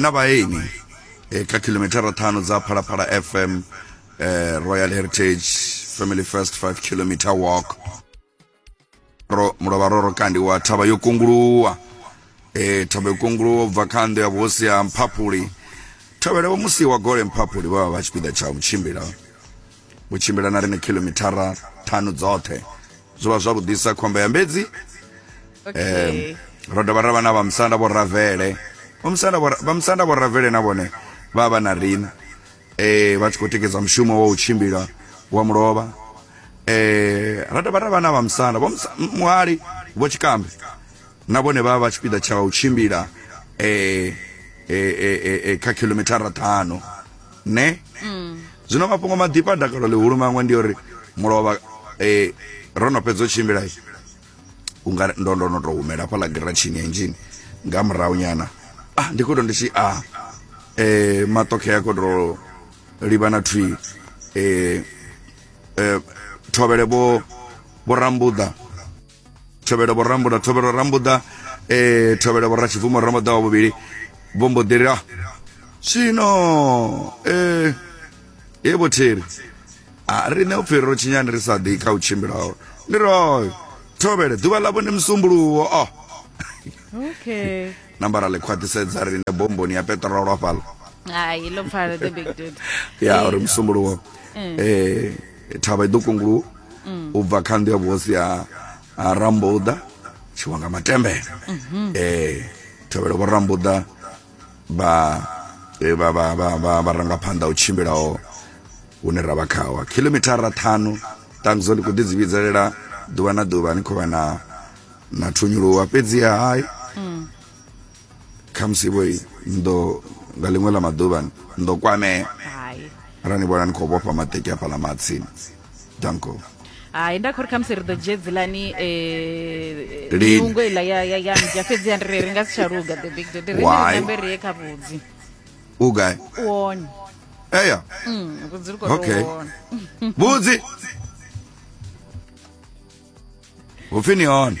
na vhaeni eh, kha khilomithara ṱhanu dza phalaphala fm eh, royal heritage family first 5 kilometer walk ro mulovha ro ro kandiwa thavha yo kunguluwa eh, thavha yo kunguluwa ubva kha ndo ya vhuhosi ya mphaphuli thavhela vho musi wa gole mphaphuli vha vha vha tshipiḓa tsha u tshimbila u tshimbila na riṋe khilomithara ṱhanu dzoṱhe zwo vha zwavhuḓisa khomba ya mbedzi okay. um, ro dovha ra vha na vhamusanda vho ravele vhamusanda vho ravele na vhone vha vha na riṋe um vha tshi khou tikedza mushumo wa u tshimbila wa mulovha eh ra dovha ra vha na vhamusanda vho muhali vho tshikambe na vhone vha vha tshipiḓa tsha u tshimbila eh eh eh kha khilomithara ṱhanu ne mm. zwino mafhungo maḓifha a dakalo ḽihulu maṅwe ndi uri mulovha um ro no fhedza u tshimbila unga ndo ndo no to humela hafha ḽa giratshini ya injini nga murahu nyana ah ndi khoto ndi tshi a ah, eh matokhe ya khoto liba na thwi eh eh thovele bo bo rambuda thovhelo vho rambuda thovhelo rambuda eh thovhelo vho ratshibvumo rambuda wa vhuvhili vho mbo ḓi ri ah zwino eh ye vho thiri a riṋe u pfhi ro tshinyani ri sa ḓi kha u tshimbilaho ndi royo thovhele ḓuvha ḽavho ndi musumbuluwo o okay nambara ḽi khwaṱhisedza riṋe bomboni ya peṱirolo hafhaḽa hai lo pfala the big dude ya uri musumbuluwo eh thavha i ḓo kungulu mm. u bva kha nnḓu ya vhuhosi ha rambuḓa tshiwa nga matembele mhm. eh tevhelo vho rambuḓa vha eh, vha vha vha vha ranga phanḓa u tshimbilaho hune ra vha khawa khilomithara ṱhanu ṱanguzo ndi khou ḓi dzi vhidzelela ḓuvha na ḓuvha ni khou vha na na thunyuluwa fhedziha hai mm. khamusi vho ndo nga ḽiṅwe ḽa maḓuvha ndo kwamea ara ni vhona ni khou vhofha maṱeki a fhaḽa matsini danko hai nda khori khamusi ri ḓo dzhie dzilani eh, miungo iḽa ya ya ya mja fhedzi ya ndiri ri nga si tsha luga the big dodi ri nambe ri ye kha vhudzi u gai wone eya mm, vhudzi ri khou okay. vhudzi upfi ni hone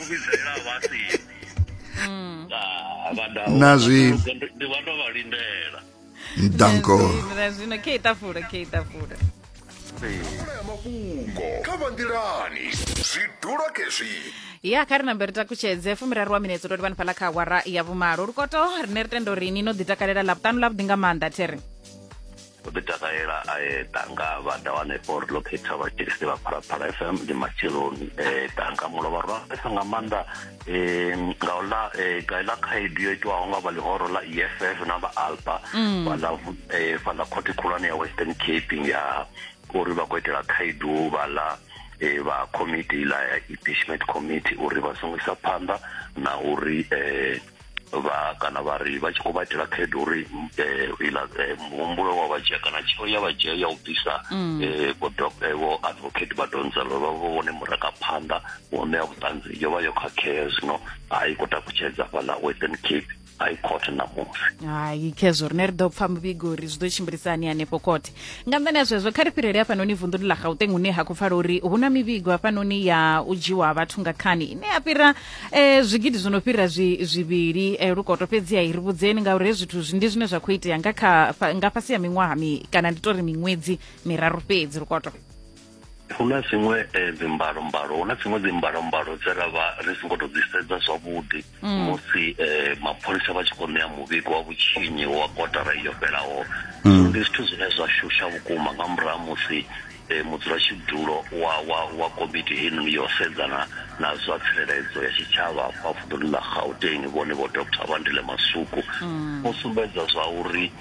na zwi ndi vha ndo vha lindela ndanko zwino khe itafula khe itafula ya mafhungo kha vanḓilani zwi dula khezwi ya kha ri nambe ri takutshedze fumiraru wa minetse ndo livhani fhaḽa kha awara ya vhumalo lukoto rine ri tenda uri ni no ḓi takalela ḽavhuṱanu ḽavhuḓi nga maanḓa there u ḓi takalela a eḓa nga vha da wane for ḽo khetha vha tshilisi vha phalaphala fm ndi matsheloni eḓa nga mulovha rwesa nga maanḓa um nga uḽa gaiḽa khaedu yo itiwaho nga vha ḽihoro ḽa eff na vha alba fhaḽa fhaḽa khothe khulwane ya western cape ya uri vha khou itela khaedu vhaḽa e vha committee ḽa ya impeachment committee uri vha songo isa phanḓa na uri um vha kana vha ri vha tshi khou vha itela khaedu uri eh, iḽa eh, muhumbulo wa vha dzhia kana tsheo ya vha dzhia ya u bvisa mm. eh, vho eh, vho advocate vha donzelo vha vho vhone murangaphanḓa wo ṋea vhuṱanzi yo vha yo khakhea zwino a i khou takutshedza fhaḽa western cape high court ṋamusi hai khezwo rine ri ḓo pfa muvhigo uri zwi ḓo tshimbilisa hani hanefho khothe nga nḓani ya zwezwo kha ri fhirele hafhanoni vunḓuni ḽa gauteng hune ha khou pfala uri hu na mivhigo hafhanoni ya u dzhiwa vhathu nga khani ine ya fhira Eh, zwigidi zwi no fhira zwi zwivhili eh, lukoto fhedzi hai ri vhudzeni ngauri hezwi zwithu zwi ndi zwine zwa khou itea nga kha fa- nga fhasi ya miṅwaha mi kana ndi tori miṅwedzi miraru fhedzi lukoto hu na dziṅwe eh, dzimbalombalo hu na dziṅwe dzimbalombalo dze ra vha ri songo tou dzi sedza zwavhuḓi musi eh, mapholisa vha tshi khou ṋea muvhigo wa vhutshinyi wa kotara iyo fhelaho so ndi zwithu zwine zwa shusha vhukuma nga murahu ha musi Mudzulatshidulo wa wa wa komiti heinoni ya u sedzana na zwa tsireledzo ya tshitshavha fha vunḓuni ḽa Gauteng, vhone Vho Doctor Bandile Masuku, vho sumbedza zwa uri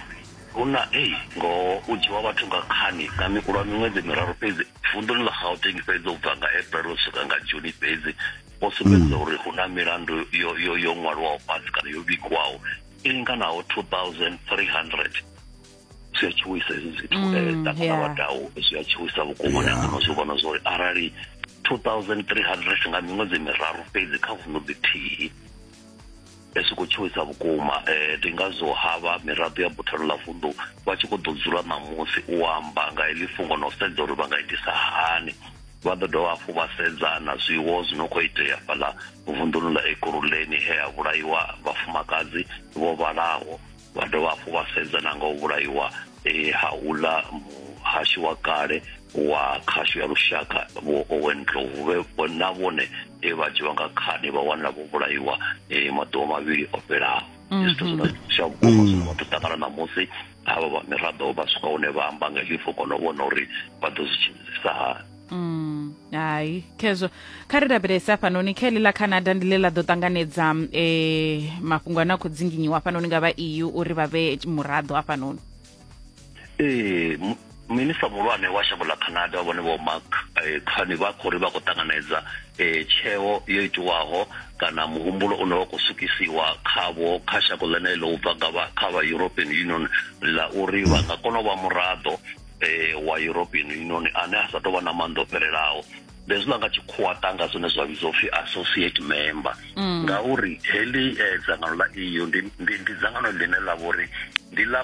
hu na ei ngoho u dzhiwa vhathu nga khani nga mi lwa miṅwedzi miraru fhedzi vunḓuni ḽa Gauteng fhedzi u bva nga April u swika nga June fhedzi, vho sumbedza uri hu na milandu yo yo yo ṅwalwaho fhasi kana yo vhigwaho i linganaho 2300. zwi a tshuwisa hezwi zwithu mm, eh, ṱangana wa dau zwi a tshuwisa vhukuma na ngeno zwi vhona zwori arali 2300 nga miṅwedzi miraru fhedzi kha vuno ḽithihi zwi khou tshuwisa vhukuma um eh, ndi ngazwo havha miraḓo ya buthano ḽa vunḓu vha tshi khou ḓo dzula ṋamusi u amba nga heḽi fungo na u sedza uri vha nga itisa hani vha ḓo dovha hafhu vha sedza na zwiwo zwi no khou itea fhaḽa vunḓuni ḽa ekuruleni he ha vhulaiwa vhafumakadzi vho vhalaho vha dovha hafhu vha sedza na nga u vhulaiwa eh, ha uḽa muhashi wa kale wa khasho ya lushaka vho owen dlovu na vhone e vha dzhiwa nga khani vha wanela vho vhulaiwa eh, maḓuvha mavhili o fhelaho mhm. zwithu zwine zwa vhukuma zwine vhathu ṱangana ṋamusi havha vha miraḓo vha swika hune vha amba nga hifo kona u vhona uri vha ḓo zwi tshimbilisa hani Mm, hai khezwo kha ri lavhelese hafhanoni kha ḽa canada ndi ḽe ḽa ḓo ṱanganedza um mafhungo ane a khou dzinginyiwa hafhanoni nga vha eu uri vha vhe muraḓo hafhanoni ee minista muhulwane wa shango ḽa canada wa vhone vho mark eh, khani vha khou ri vha khou ṱanganedza eh, tsheo yo itiwaho kana muhumbulo une wa khou sukisiwa khavho kha shango ḽeneḽo u bva kha vha european union ḽa uri vha nga kona u vha muraḓo eh, wa european union ane a sa tou vha na maanḓa o fhelelaho bezwiḽa nga tshikhuwa tanga zwine zwa vhidzwa upfhi associate member mm. ngauri heḽi eh, dzangano ḽa eu ndi dzangano ḽine ḽa vhori ndi ḽa